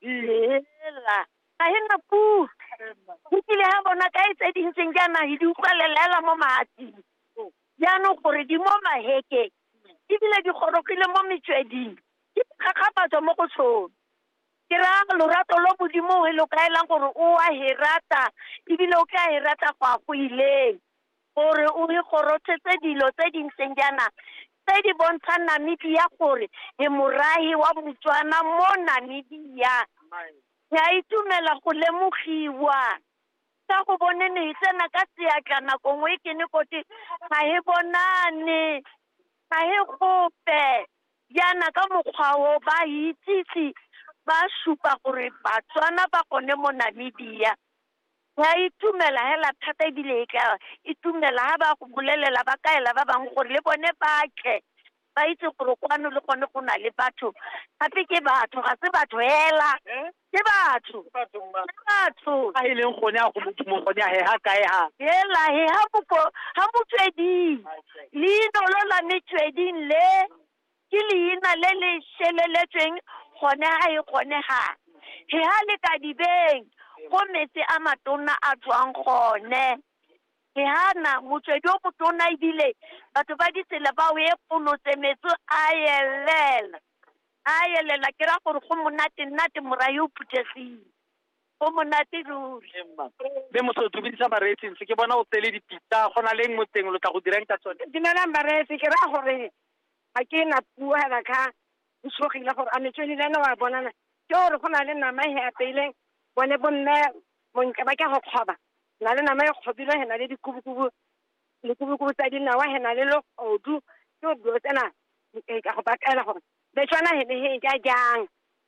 lela ga e na puo ebile ga bona kae tse di ntseng jaana di utlwalelela mo mahatsing jaanong gore di mo mahekeng ebile di gorogile mo metsweding di gakgafatswa mo go tsone ke raya lorato lo modimo e lo kaelang gore o a e rata ebile o tla e rata go ya go ileng gore o re gorothetse dilo tse di ntseng jaana tse di bontshang Namibia gore e morahi wa Botswana mo Namibia. Ke a itumela go lemogiwa ka go bone ne e tsena ka seatla nako nngwe ke ne kote ga e bonane ga e gope jaana ka mokgwa o ba itsise ba supa gore Batswana ba gone mo Namibia. Ya itumela hela thata ebile e tla itumela ha ba go bolelela ba kaela ba bangwe gore le bone ba tle ba itse gore kwano le gone go na le batho gape ke batho ga se batho hela ke batho ke batho a e leng gone a go modimo gone a heha kae ha hela he ha boko ha motsweding leino lo la metsweding le Ke leina le le šeleletsweng gone ga e kgonegang. He ha le ka dibeng go metse a matona a tswang gone. He ha na motswedi o motona ebile batho ba ditsela ba o epolotse metso a yelela, a yelela ke ra gore go monate-nnate morahi o phuthegile. Go monate ruri. Ee, mma. Mme moso o dumedisa bareetsi ntse ke bona o tsele dipitsa go na leng mo teng lo tla go dirang ka tsone. Dumelang bareetsi ke raya gore ga ke na puo hela ka o tshogile gore a metswedi le ene wa bonana ke gore go na le nama e apeileng bone bomme montle ba ka go kgoba na le nama e kgobile he na le dikubukubu dikubukubu tsa dinawa he na le legodu ke dilo tsena ka go bakaela gore betswana he ne he ja jang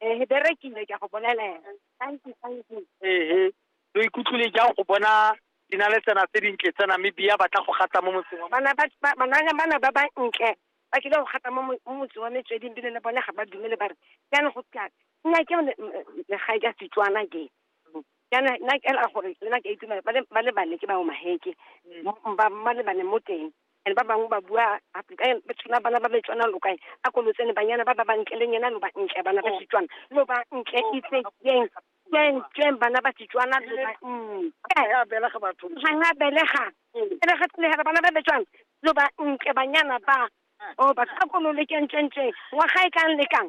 Ee, be re kile ka go bolelela. Thank you, thank you. ehe lo ikutlwile jang go bona di na le tsena tse dintle tsa namibia ba tla go gata mo motseng wa Bana ba ba- banana bana ba ba ntle ba kile go gata mo mo- mo motseng wa metsweding bile le bone ga ba dumele ba re jaanong go tla nna ke le- m- m- legae ka setswana ke jaana nna ke ela gore le nna ke a itumela ba le ba le bane ke ba omaheke ba ba le bane mo teng and ba bangwe ba bua ba tshwana bana ba betswana lo kae a ko lotsene banyana ba ba bantle le nyena lo ba ntle bana ba setswana lo ba ntle itse keng keng keng bana ba setswana lo ba ntle ga belega batho ga nga belega belega tlegela bana ba betswana lo ba ntle banyana ba o ba tla kono le kentlentle ngwaga e kang le kang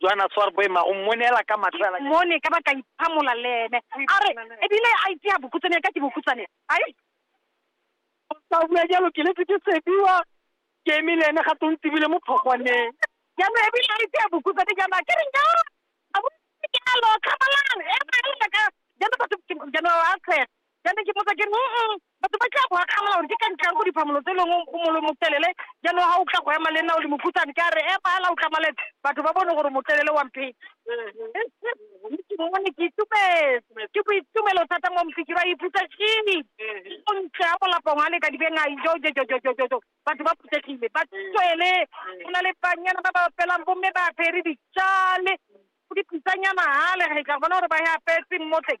Joana Swar Boema o mmonela ka matlho a mone ka ba ka iphamola le ene a re ebile a itse ya bokutsane ya ka ke bokutsane ai sa bua jalo ke letse ke sebiwa ke eme le ene ga tong tsebile mo phogwaneng jaanong ebile a itse ya bokutsane jaana ke reng ja a bo ke alo kgabalang e ba e ka jaana batho jaana a tshega Ke ne ke mmotsa ke re, mm-mm, batho ba tla go akgamela gore ke ka ntlhang go diphamolo tse leng go molo motelele, jaanong ga o tla go ema le nna o le mokhutshwane, ke a re epala o tlamalele batho ba bone gore motelele wa mphetse. Ke mo ne ke itumetse, ke boitumelo thata mo Mfikiri a iphutsa kini, o ntle a molapong a le ka dibeng a ijo jojojojojo, batho ba phuthegile, ba tswele, go na le banyana ba ba apelang, bomme ba apere ditšale, o di pitsanya mahale, re tla bona gore ba e apetse mmotleng.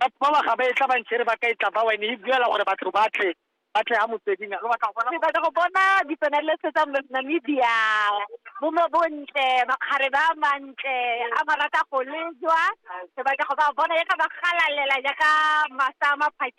Batho bawa ga ba etla ba nchere ba ka etla bawa, e ne e buela gore batho ba tle, ba tle ha motsweding. Lo batla go bona? Ke batla go bona dipenalese tsa Namibia, bomme bontle, makgare ba a mantle, a ba rata go lejwa. Ke batla go ba bona jaaka ba galalela jaaka masa a maphakela.